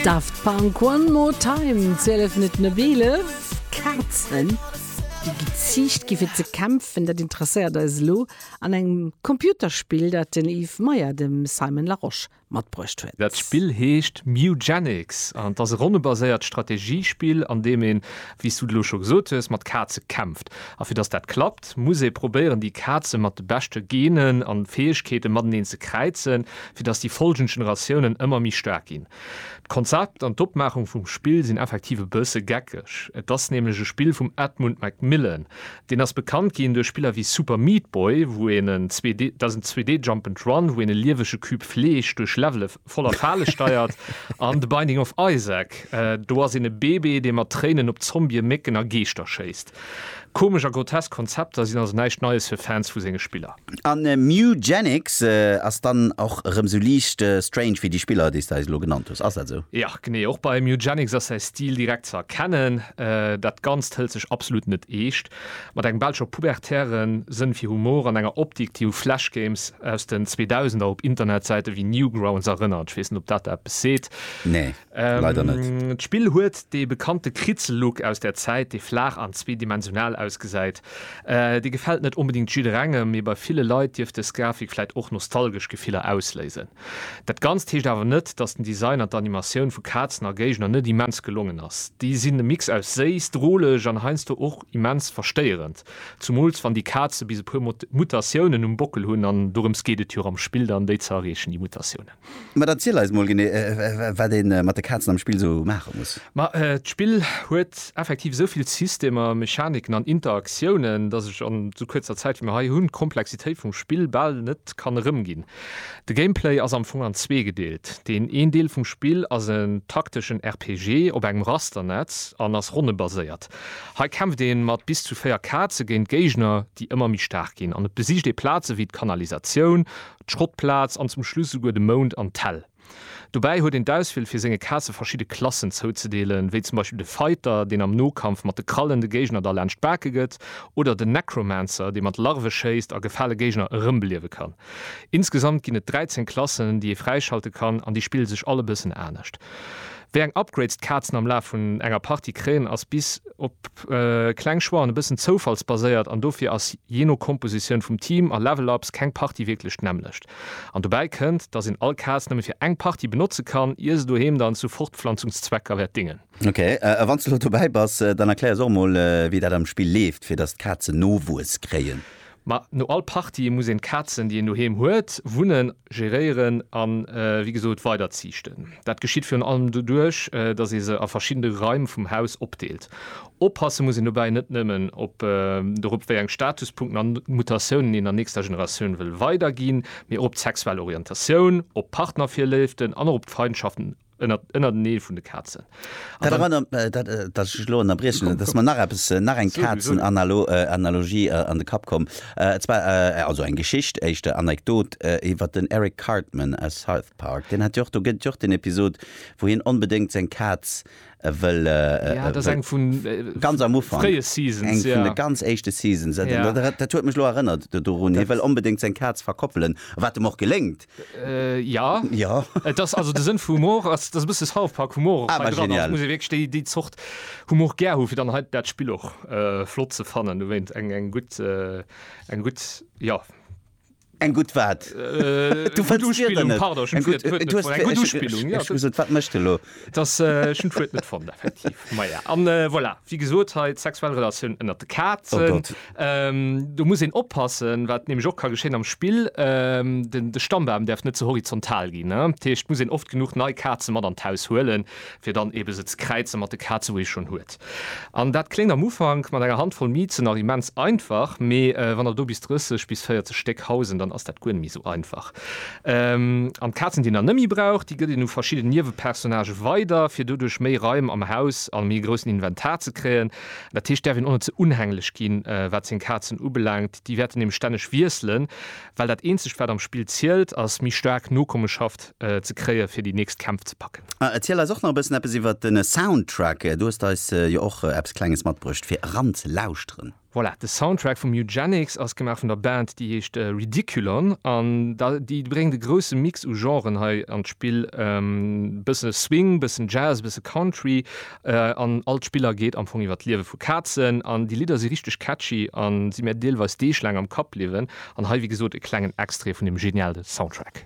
Daft Punk One More Time, 12 Minutten op 11. Kazen, déi geziicht gi fir ze kämpfen, dat interesséiert eis elo an engem Computerspill, dat den Yves Meyer dem Simon Larosche matbruecht huet. Dat Spill heescht Mewgenics an et ass e ronnebaséiert Strategiespill, an deem een, wéi s du et elo scho gesot hues, mat Kaze kämpft. A fir datt dat klappt, Et muss ee probéieren, déi Kaze mat de beschte Genen a Fäegkeete mateneen ze kräizen, fir datt déi follgend Generatiounen ëmmer méi staark ginn. D'Konzept an d'Opmaachung vum Spill sinn effektiv e bësse geckeg. Et ass nämlech e Spill vum Edmund McMillen. Deen ass bekannt ginn duerch Spiller wéi Super Meat Boy, wou een en 2D, dat ass en 2D Jump and Run, wou een e liewege Cube Fleesch duerch Levele. voller Fale steiert, an The Binding of Isaac, do ass een e Bebe, dee mat Tréinen op Zombie, Mécken a Geeschter schéisst. Komesch a grotesk Konzepter sinn also näischt Neies fir Fans vu senge Spiller. A Mewgenics ass dann och erëm sou liicht strange wéi déi Spiller, déi s de eis elo genannt hues, ass dat esou? Jo, genee. Och bei Mewgenics ass säi Stil direkt ze erkennen. Dat Ganzt hëlt sech absolut net eescht. Mat engem belscher pubertäre Sënn fir Humor an enger Optik, déi u Flashgames aus den Zweedausender op Internetsäite wéi Newgrounds erënnert. Ech weess net, ob dat der eppes seet. Nee, leider net. D'Spill huet dee bekannte Kritzel-Look aus där Zäit, dee flaach an zweedimensional ausgesäit. Dee gefält net onbedéngt jidderengem, mee bei ville Leit dierft dës Grafik vläicht och nostalgesch Gefiller ausléisen. Dat Ganzt heescht awer net, dass den Design an d'Animatioun vu Kazen a Géigner net immens gelongen ass. Déi sinn e Mix aus séiss, droleg an heiansdo och immens verstéierend. Zumools wann déi Kaze bis e puer Mutatiounen um Bockel hunn, an dorëms geet et jo am Spill dann, déi ze erreechen, déi Mutatiounen. Mä da ziel eis mol genee, wat ee mat de Kazen am Spill esou maache muss. Ma d'Spill huet effektiv esou vill Systemer, Mechaniken an Interaktiounen, dass ech an esou kuerzer Zäit, wéi mer hei hunn, d'Komplexitéit vum Spill bal net kann erëmginn. De Gameplay ass am Fong an zwee gedeelt. Deen een Deel vum Spill ass en takteschen RPG op engem Rasternetz an ass ronnebaséiert. Hei kämpft ee mat bis zu 4 Kaze géint Géigner, déi ëmmer méi staark ginn an et besicht ee Plaze wéi d'Kanalisatioun, d'Schrottplaz an zum Schluss esouguer de Mound an d'Häll. Dobäi huet een d'Auswiel fir senge Kaze verschidde Klassen zouzedeelen, wéi zum Beispill de Fighter, deen am Nokampf mat de Krallen de Géigner da laanscht d'Bake gëtt, oder den Necromancer, dee mat Larve schéisst a gefale Géigner erëmbeliewe kann. Insgesamt ginn et 13 Klassen, déi ee fräischalte kann, an déi spille sech all e bëssen anescht. Wéi eng Upgrades d'Kazen am Laf vun enger Partie kréien, ass bis op kleng Choixen e bëssen zoufallsbaséiert, an dofir ass, jee no Kompositioun vum Team a Level-Ups, keng Partie wierklech d'nämmlecht. An dobäi kënnt, dass een all Kaz nëmme fir eng Partie benotze kann, ier se doheem dann zu Fortpflanzungszwecker wäert dingen. Ok, a wann s de elo dobäi bass, dann erklär ons och emol, wéi dat am Spill leeft, fir dass d'Kazen Nowuess kréien. Ma no all Partie muss een d'Kazen, déi een doheem huet, wunnen, geréieren an, wéi gesot, weiderziichten. Dat geschitt virun allem doduerch, dass ee se a verschidde Raim vum Haus opdeelt. Oppasse muss een dobäi net nëmmen op dorop, wéi eng Statuspunkten an Mutatiounen een der nächster Generatioun wëll weiderginn, mee och op d'sexuell Orientatioun, op Partnervirléiften an och op d'Feindschaften ënnertenee vun de Kazen. Dat erënnert, datt ech elo ënnerbriechen, et ass mer nach eppes, nach eng Kazenanalogie an de Kapp komm, et zwar, also eng Geschicht, éischter Anekdot, iwwer den Eric Cartman aus South Park. Deen hat jo och, do gëtt et jo och den Episod, wou hien onbedéngt seng Kaz e wëll Ja, et ass eng vun ganz am Ufank, fréie Seasons, eng vun ja. de ganz éischte Seasons, dat Ja. dat dat huet mech elo erënnert do dorun, hie wëll onbedéngt seng Kaz verkoppelen, wat em och geléngt. Ja, Ja. et ass also de Sënn vu Humor ass, dass e bësse South Park Humor och Ah, hei war dran ass. genial. Et muss ee wierklech déi déi Zort Humor gär hu fir dann hei dat Spill och flott ze fannen, dowéint eng eng gutt eng gutt, jo, Eng gutt wat? Du fënns d'Wierder net? Eng gutt Uspillung, jo. Ech muss et, wat mécht e lo? Dass, ech hunn d'Wuert net fonnt, effektiv. Maja, an voilà, wéi gesot, hei d'sexuell Relatioun ënnert de Kazen. Do muss een oppassen, wat nämlech och ka geschéien am Spill, de Stammbaum däerf net ze horizontal ginn. Dat heescht, et muss een oft genuch nei Kaze mat an d'Haus huelen. fir dann ebe se ze kräize mat de Kaze wou ee schonn huet. An dat kléngt am Ufank mat enger Handvoll Mizen nach immens einfach, mee wann der do bis 30 bis 40 Stéck hausen, dann ass dat guer net méi esou einfach. An d'Kazen déi een dann net méi brauch, déi gëtt een u verschidden Niewepersonnage weider, fir doduerch méi Raim am Haus a méi groussen Inventar ze kréien. Dat heescht, däerf een och net ze unhänglech ginn, wat seng Kazen ubelaangt. Déi wäerten nämlech stänneg wiesselen, well dat eenzegt, wat am Spill zielt, ass méi staark Nokommeschaft ze kréien, fir déi nächst Kämpf ze packen. A erziel eis och nach e bëssen eppes iwwert de Soundtrack. Du hues eis jo och eppes Klenges matbruecht, fir eranzelauschteren. Voilà, de Soundtrack vum Eugenics ass gemaach vun der Band, déi heescht Ridiculon. An déi bréngt e grousse Mix u Genren hei an d'Spill, e bësse Swing, e bëssen Jazz, e bësse Country An all d'Spiller geet am Fong iwwer d'Liewe vu Kazen. An déi Lidder si richteg catchy a si mir deelweis deeglaang am Kapp bliwwen. An hei, wéi gesot, e klengen Extrait vun deem geniale Soundtrack.